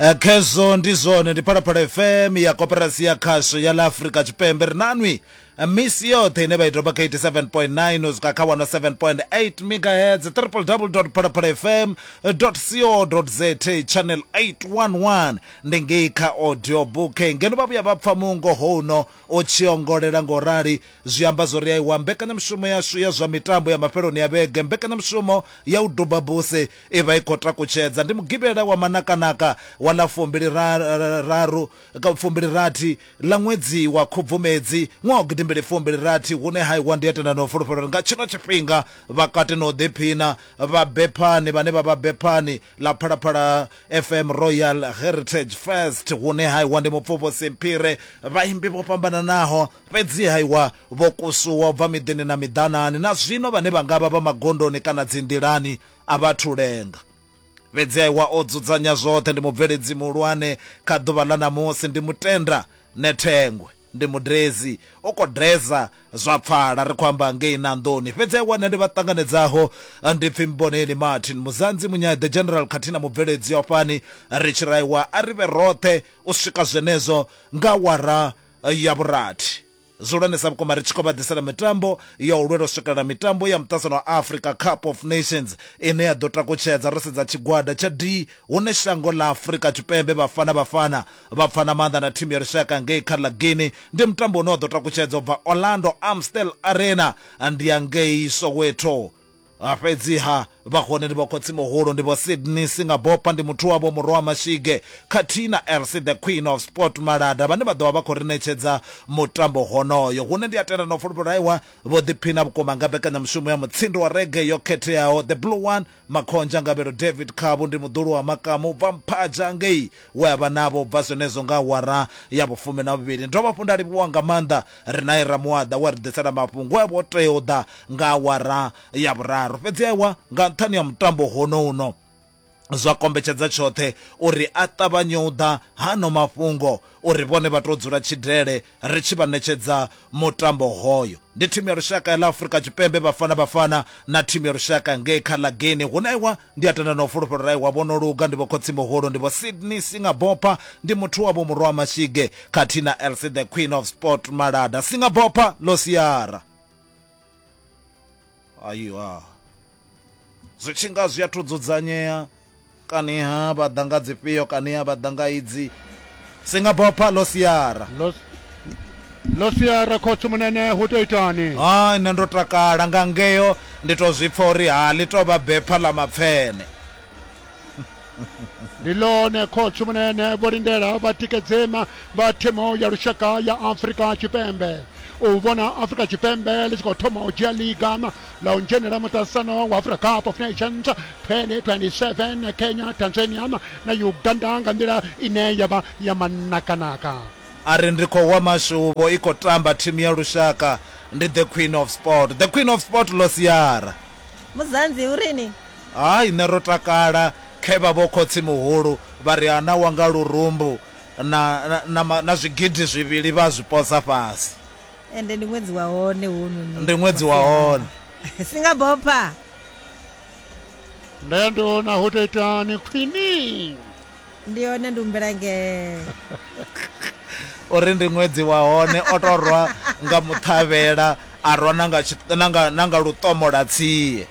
Eh, khezwo ndi zwone ndi phalaphala fm ya koperasi ya khasho ya la afrika tshipembe ri nanwi eh, misi yoṱhe ine vha i doba kha 87.9 u swika kha 107.8 megahertz www phalaphala fm co za channel 811 ndi ngei kha audio book ngeno vha vhuya vha pfa mungo houno o tshiongolela ngo rali zwi amba zwo ri aiwa mbekanyamushumo yashu ya zwa mitambo ya mafheloni ya vhege mbekanyamushumo ya u duba buse I vha i khou takutshedza. Ndi Mugivhela wa manakanaka wa ḽa fumbiliraru, fumbilirathi ḽa ṅwedzi wa Khubvumedzi ṅwaha wa gidimbili fumbilirathi hune ha iwa ndi a tenda na u fulufhela uri nga tshino tshifhinga vha kati na u ḓiphina vha Bephani vhane vha vha Bephani ḽa Phalaphala FM Royal Heritage Fest hune ha iwa ndi Mupfuvhusi Mphire vhaimbi vho fhambananaho fhedzi ha iwa vho kusuwa u bva miḓini na miḓanani na zwino vhane vha nga vha vha magondoni kana dzinḓilani a vha thu lenga. Fhedzi Aiwa o dzudzanya zwoṱhe, ndi mubveledzi muhulwane kha ḓuvha ḽa ṋamusi, ndi mutenda Nethengwe, ndi mudedzi, u khou dedza zwa pfala, ri khou amba ngei Nandoni. Fhedzi Aiwa nṋe ndi vha ṱanganedzaho ndi pfi Mboneni Martin, Muzanzi, Munyaḓe, General khathihi na mubveledzi wa fhani, ri tshi ri Aiwa a ri vhe roṱhe u swika zwenezwo nga awara ya vhurathi. Zwihulwane sa vhukuma ri tshi khou vha ḓisela mitambo ya u lwela u swikelela mitambo ya muṱasano wa Africa Cup of Nations ine ya ḓo takutshedza ro sedza tshigwada tsha D hune shango ḽa Afrika Tshipembe Bafana Bafana vha pfana maanḓa na thimu ya lushaka ngei kha ḽa Guinea. Ndi mutambo une wa ḓo takutshedza u bva Orlando Amstel Arena ndi ya ngei Soweto. Ha fhedziha, vha hone ndi vho Khotsi-muhulu, ndi vho Sydney Singabopa, ndi muthu wavho Murowa Mashige khathihi na Elsie the Queen of Sport Malada vhane vha ḓo vha vha khou ri ṋetshedza mutambo honoyo. Hune ndi a tenda na u fulufhela uri Aiwa vho ḓiphina vhukuma nga mbekanyamushumo ya mutsindo wa reggae yo khetheaho. The Blue One, Makhonzha Ngavhelo David Khabu ndi muḓulu wa makamu u bva Mphaja ngei we a vha navho u bva zwenezwo nga awara ya vhufumi na vhuvhili. Ndi dovha hafhu nda livhuwa nga maanḓa Rinae Ramuaḓa we a ri ḓisela mafhungo e a vha o tea u ḓa nga awara ya vhuraru. Fhedzi ewa, nga nṱhani ha mutambo honouno, zwa kombetshedza tshoṱhe uri a ṱavhanye u ḓa ha ano mafhungo uri vhone vha tou dzula tshidele ri tshi vha ṋetshedza mutambo hoyo. Ndi thimu ya lushaka ya ḽa Afurika Tshipembe Bafana Bafana na thimu ya lushaka ngei kha ḽa Guinea. Hu na iwa ndi a tenda na u fulufhela uri iwa vho no luga ndi vho khotsi-muhulu ndi vho Sydney Singabopha ndi muthu wa vho Murwa Mashige khathihi na Elsie the Queen of Sport Malada Singabopha ḽo siara. Aiwa. zwi tshi nga zwi athu dzudzanyea kaniha vha ḓa nga dzifhio kaniha vha ḓa nga idzi singabopha ḽo siara ḽo siara khotsi munene hu tou itani ha nṋe ndo takala nga ngeo ndi tou zwi pfa uri ha ḽi tou vha bepha ḽa mapfene ndi ḽone khotsi munene vho lindela vhatikedzema vha thimu ya lushaka ya afurika tshipembe u vhona afurika tshipembe ḽi tshi khou thoma u dzhia liga ḽa u dzhenela muṱasano wa africa cup of nations 2027 kenya tanzania na uganda nga nḓila ine ya vha ya manakanaka a ri ndi khou wa mashuvho i khou tamba thimu ya lushaka ndi the queen of sport the queen of sport losiara Muzanzi u rini? Hai, nṋe ro takala khe vha vho khotsi-muhulu vha ri ana wa nga lurumbu na, na, na, na zwigidi zwivhili vha zwi posa fhasi. Ende ndi ṅwedzi wa hone hounoni. Ndi ṅwedzi wa hone. Singabopha. Nṋe ndi vhona hu ḓo itani khwini. Ndi hone ndi humbela ngee. O ri ndi ṅwedzi wa hone o tou rwa nga muṱhavhela a rwa na nga na nga na nga luṱomola tsie.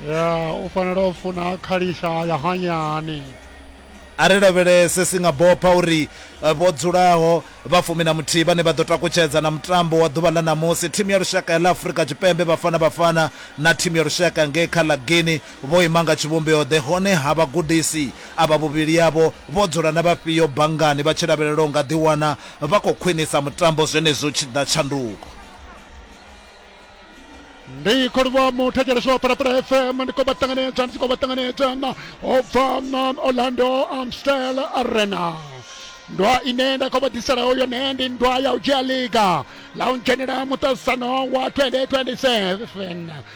Ya u fanela u funa khalisha ya hanyani. A ri lavhelese Singabopha uri eh, vho dzulaho vha fumi na muthihi vhane vha ḓo takutshedza na mutambo wa ḓuvha ḽa ṋamusi thimu ya lushaka ya ḽa Afrika Tshipembe Bafana Bafana na thimu ya lushaka ngei kha ḽa Guinea Vho ima nga tshivhumbeo-ḓe, hone ha vhagudisi avha vhuvhili avho vho dzula na vhafhio banngani vha tshi lavhelela u nga ḓiwana vha khou khwinisa mutambo zwenezwi hu tshi ḓa tshanduko? Ndi khou livhuwa muthetshelesi wa Phalaphala FM, ndi khou vha ṱanganedza, ndi tshi khou vha ṱanganedza u bva Orlando Amstel Arena. Nndwa ine nda khou vha ḓiselaho yone ndi nndwa ya u dzhia ḽiga ḽa u dzhenela muṱaṱisano wa 2027.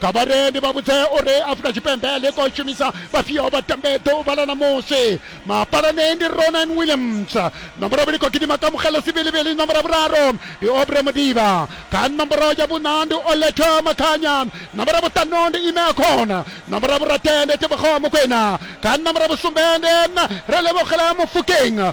Kha vharendi vha vhudze uri Afrika Tshipembe ḽi khou shumisa vhafhio vhatambi ḓuvha ḽa ṋamusi. Mapalani ndi Ronwen Williams, nomboro vhili khou gidima Kamohelo Sibilibili, nomboro vhuraru ndi Aubrey Modiba, kha nomboro ya vhuṋa ndi Oletha Makhanya, nomboro vhuṱanu ndi Ime Akhona, nomboro vhurathi ndi Tebogo Mokoena, kha nomboro vhusumbe ndi Relebogela Mofokeng.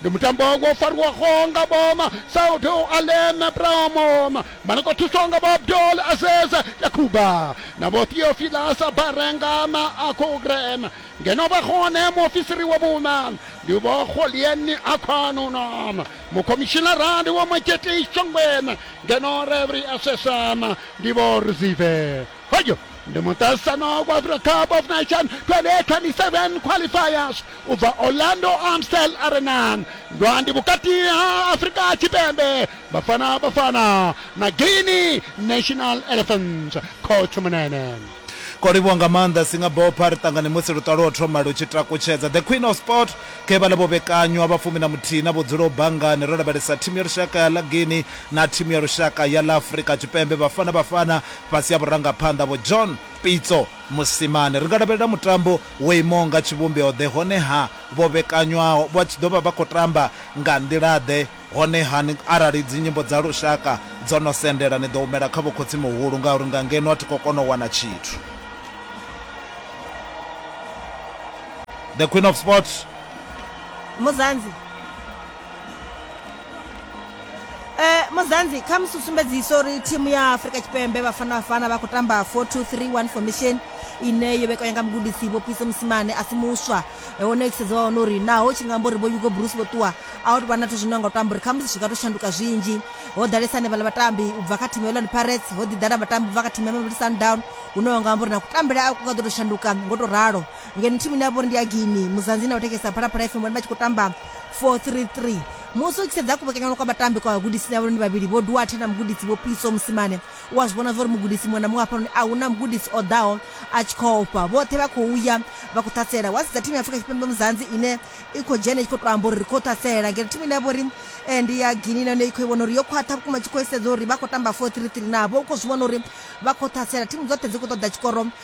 Ndi mutambo wo fariwaho nga Boma, Saudi Aleme Promo, vha no khou thuswa nga vho Abdul Aziz Yakuba na vho Theophilus Barengama Akugren, ngeno vha hone muofisiri wa vhuṋa ndi vho Kgolienni Akgwanuna, mukhomishinara ndi vho Majetis Chongwen, ngeno Referee Assessor ndi vho Rzive. Hoyo ndi muṱaṱisano wa Africa Cup of Nations 2027 qualifiers u bva Orlando Amstel Arena ndwandi vhukati ha Afrika Tshipembe Bafana Bafana na Guinea National Elephants Coach Munene Ko livhuwa nga maanḓa Singabopha ri ṱangane musi luṱa lwo thoma lu tshi takutshedza The Queen of Sport khe vhala vho vhekanywa vha fumi na muthihi na vhudzulo banngani ro lavhelesa thimu ya lushaka ya ḽa Guinea na thimu ya lushaka ya ḽa Afrika Tshipembe Bafana Bafana fhasi ha vhurangaphanḓa Vho John Pitso Mosimane. Ri nga lavhelela mutambo wo imaho nga tshivhumbeo-ḓe, hone-ha vho vhekanywaho vha tshi ḓo vha vha khou tamba nga nḓila-ḓe? Hone-ha ni, arali dzinyimbo dza lushaka dzo no sendela, ni ḓo humela kha vhokhotsi-muhulu ngauri nga ngeno a thi khou kona u wana tshithu. The Queen of Sport. Muzanzi. Eh, muzanzi kha musi sumbedzisa uri thimu ya afurika tshipembe vhafana vhafana vha khou tamba 4231 formation ine yo vhekanya nga mugudisi vho pise musimane a si muswa Eh, hone thusedzo wa wana uri naho tshi nga amba uri vho yugo bruce vho ṱuwa a hu tou vha na zwithu zwine nga u tamba uri kha musi zwi nga tou shanduka zwinzhi ho ḓalesa hanevhala vhatambi u bva kha thimu ya orlando pirates ho ḓi ḓala vhatambi u bva kha thimu ya mamelodi sundown hune wa nga amba uri na kutambele a ku nga ḓo tou shanduka ngo tou ralo ngeno thimu ine ya vha uri ndi ya guinea muzanzi na u thekesa phalaphala fm vhone vha tshi khou tamba 433 musi u tshi sedza kuvhekanyanwa kwa vhatambi kwa vhagudisi na vhone vhavhili vho duwathe na mugudisi vho piso musimane u a zwi vhona zwauri mugudisi muṅwe na muṅwe hafhanoni a hu na mugudisi o ḓaho a tshi khou ofha vhoṱhe vha khou ya vha khou ṱhasela wa sedza thimu ya afrika tshipembe muzanzi ine i khou dzhena i tshi khou tou amba uri ri khou ṱhasela ngeno thimu ine ya vha uri eh, ndi ya gini na yone i khou i vhona uri yo khwaṱha vhukuma tshi khou isedza uri vha khou tamba 433 navho u khou zwi vhona uri vha khou ṱhasela thimu dzoṱhe dzi khou ṱoḓa tshikoro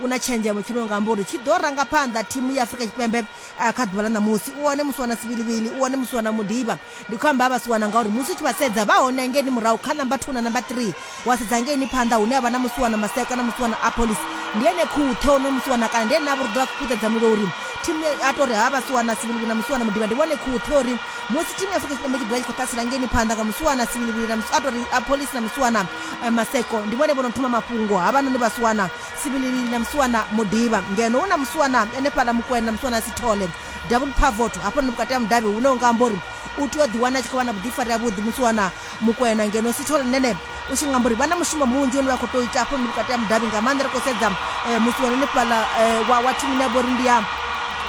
u na tshenzhemo tshi no nga amba uri tshi ḓo ranga phanḓa thimu ya Afrika Tshipembe kha ḓuvha ḽa ṋamusi. U hone Musiwana Sivhilivhili, u hone Musiwana Mudiba. Ndi khou amba ha Vhasiwana ngauri musi u tshi vha sedza vha hone hangeini murahu kha number two na number three. Wa sedza hangeini phanḓa hune ha vha na Musiwana Maseko na Musiwana Appolis, ndi ene khuṱhe honoyo Musiwana kana ndi ene a vha uri u ḓo vha kuṱedza mulilo uri thimu ya, a tou ri ha Vhasiwana Sivhilivhili na Musiwana Mudiba ndi vhone khuṱhe uri musi thimu ya Afrika Tshipembe tshi ḓo vha tshi khou ṱasela hangeini phanḓa nga Musiwana Sivhilivhili na a tou ri Appolis na Musiwana Maseko ndi vhone vho no thoma mafhungo havhanoni Vhasiwana Sibilini na Musiwana Modiba ngeno hu na Musiwana ene fhaḽa Mukwena na Musiwana Sithole Double Pavot hafho ndi vhukati ha mudavhi hune u nga amba uri u tea u ḓi wana a tshi khou vha na vhuḓifari ha vhuḓi Musiwana Mukwena ngeno Sithole nene u tshi nga amba uri vha na mushumo munzhi une vha khou tou ita hafho ndi vhukati ha mudavhi nga maanḓa ri khou sedza eh, Musiwana ene fhaḽa eh, wa, wa thimini ya vhori ndi ya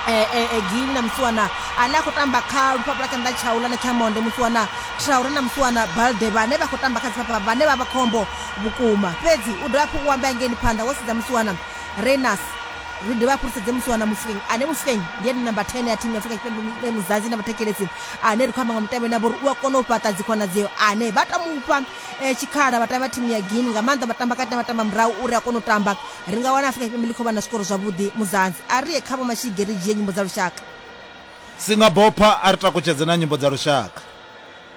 eh, eh, eh, Gili na Musiwana ane a khou tamba kha lufhafhu lwa tshanḓa tshaula na tsha monde Musiwana Traore na Musiwana Balde vhane vha khou tamba kha dzifhafha vhane vha vha khombo Vhukuma. Fhedzi u dovha hafhu u ambea ngeni phanḓa wo sedza musiwana Rayners. Ri dovhe hafhu ri sedze musiwana Mofokeng, ane Mofokeng ndi ene namba 10 ya thimu ya Afrika Tshipembe Muzanzi na vhathetshelesi ane ri khou amba nga mutevhe navho uri u a kona u fhaṱa dzikhonadzeo, ane vha tou mu fha tshikhala vhatambi vha thimu ya Guinea, nga maanḓa vhatambakati na vhatambamurahu, uri a kone u tamba. Ri nga wana Afrika Tshipembe ḽi khou vha na zwikoro zwavhuḓi Muzanzi. A ri ye kha Vho Mashige ri dzhie nyimbo dza lushaka. Singabopha a ri takutshedze na nyimbo dza lushaka.